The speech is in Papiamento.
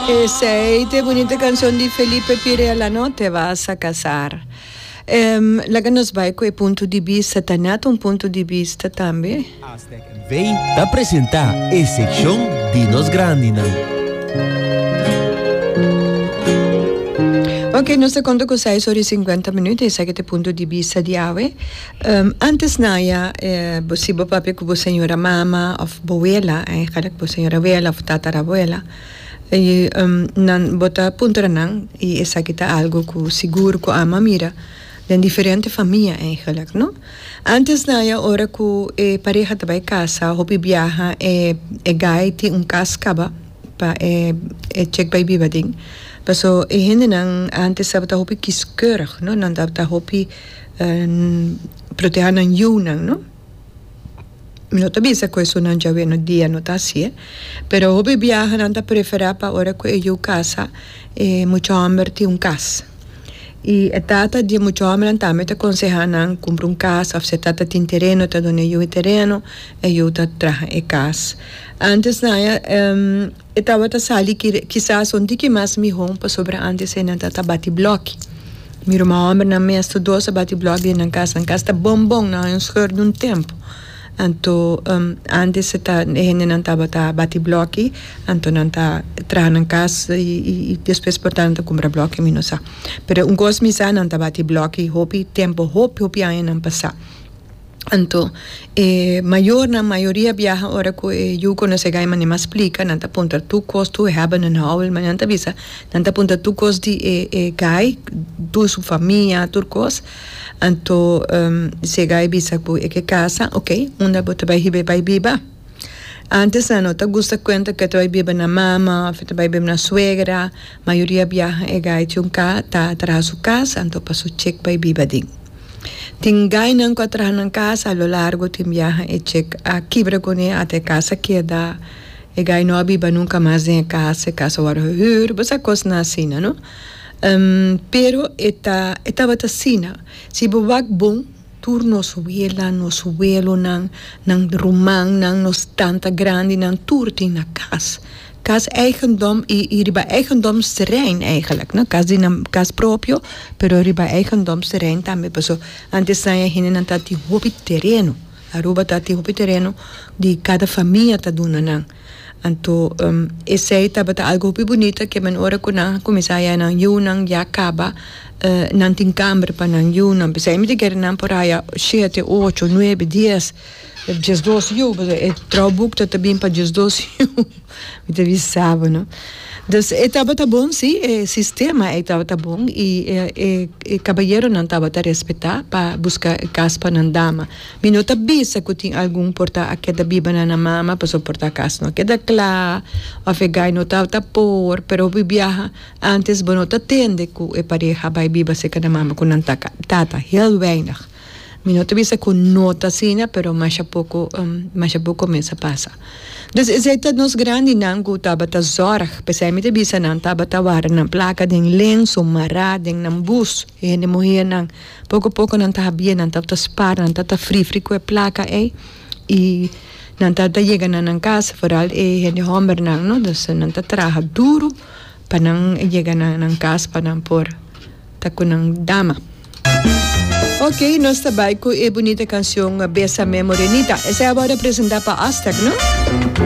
Esey t'e bunito cancion di Felipe Pirela no, Te vas a casar. Ehm, laga nos bai cu e punto di bista, ta net un punto di bista tambe. Aztec NV ta presenta e seccion di nos grandinan. Ok, nos ta conta cu seis ora y cincuenta minuut, esaki ta e punto di bista di awe. Antes naya si bo papia ku bo señora mama òf bo wela e kada ku bo señora wela òf tatara wela i nan bo ta puntra nan i esaki ta algu ku sigur ku amo a mira den diferente famia eigelik no antes naya ora ku e pareha ta bai kasa hopi biaha e gai tin un kas kaba pa e e chek bai biba aden paso e hendenan antes tabata hopi kiskeurig no nan tabata hopi. Proteha nan yunan, no? Mi no ta bisa ku esunnan djawe no dia no ta hasié, pero hopi biaha nan ta preferá pa ora ku e yu kasa e mucha hòmber tin un kas. I e tata di e mucha hòmbernan tambe ta konsehá nan kumpra un kas òf si e tata tin tereno e ta duna e yu e tereno, e yu ta traha e kas. Ántes nan a E tabata sali kire kisas son di ki mas mihon pasobra antes e nan ta ta bati bloki. Mi ruma hombernan mes tur dos a bati bloki den nan kas. Nan kas ta bon bon, nan haña un scheur den un tempo. Anto, antes e ta e hendenan tabata bati bloki, anto nan ta traha nan kas i i despues por ta nan ta kumpra bloki, mi no sa. Pero un kos mi sa, nan ta bati bloki hopi tempo, hopi hopi añanan pasá. Anto e mayornan mayoria biaha ora cu e yu conoce Gaima ni mas splica nan ta punta tu cos tu hebben en huil ma nan ta bisa nan ta punta tu cos di e e gai tur su famia tur cos anto si e gai bisa cu e ke casa ok unda bo ta bay hiba e bay biba. Antes nan no ta gusta cuenta cu e ta bay biba na mama of e ta bay biba na suegra, mayoria biaha e guy tin un ca ta traha su casa anto pa su chek bay biba aden. Tin guynan cu a traha nan casa a lo largo tin biaha e chek a kibra cune ata e casa keda e guy no a biba nunca mas den e casa, e casa worde gehuur, bo sa cosnan asina no. Pero e ta e tabata asina si bo wak bon. Tur nos wela, nos welonan, nan rumannan, nos tanta grandinan, tur tin na kas. Kas eigendom i i riba eigendomsterrein eigenlijk, no kas di nan kas propio, pero riba eigendomsterrein tambe. Paso, antes saña e hendenan tabatin hopi tereno. Aruba tabatin hopi tereno di kada famia ta duna nan. Anto esei tabata algu hopi bunita ke men ora ku nan a kuminsá haya nan yunan ya kaba nan tin kamber pa nan yunan bisai mi dikere nan por haya shete ocho nuebe dies dies dos yu pasobra e trou buk ta ta bin pa dies dos yu mi ta bisaba no dus e tabata bon si e sistema ei tabata bon i e kabayeronan tabata respetá pa buska e kas pa nan dama. Mi no ta bisa cu tin algun por ta a keda biba na nan mama pasobra por ta cas no keda cla of e guy no ta ta por, pero hopi biaha antes bo no ta tende cu e pareha a bay biba cerca nan mama cu nan tata, tata heel weinig. Mi no ta bisa cu no ta asina pero masha poco masha poco cominsza pasa. Dus esey ta nos grandinan cu tabata zorg pesey mi ta bisa nan tabata wara nan placa den lenzo mara den nan bus hende muhernan. Poko poko nan ta habie, nan ta ta spar, nan ta ta fri fri ku e plaka ei i nan ta ta yega na nan kas, foral e hende hòmbernan no, dus nan ta traha duru pa nan yega na nan kas pa nan por ta ku nan dama. Ok, nos ta bai ku e bunita kanshon Bésame Morenita. Esei awor a presentá pa Aztec, no?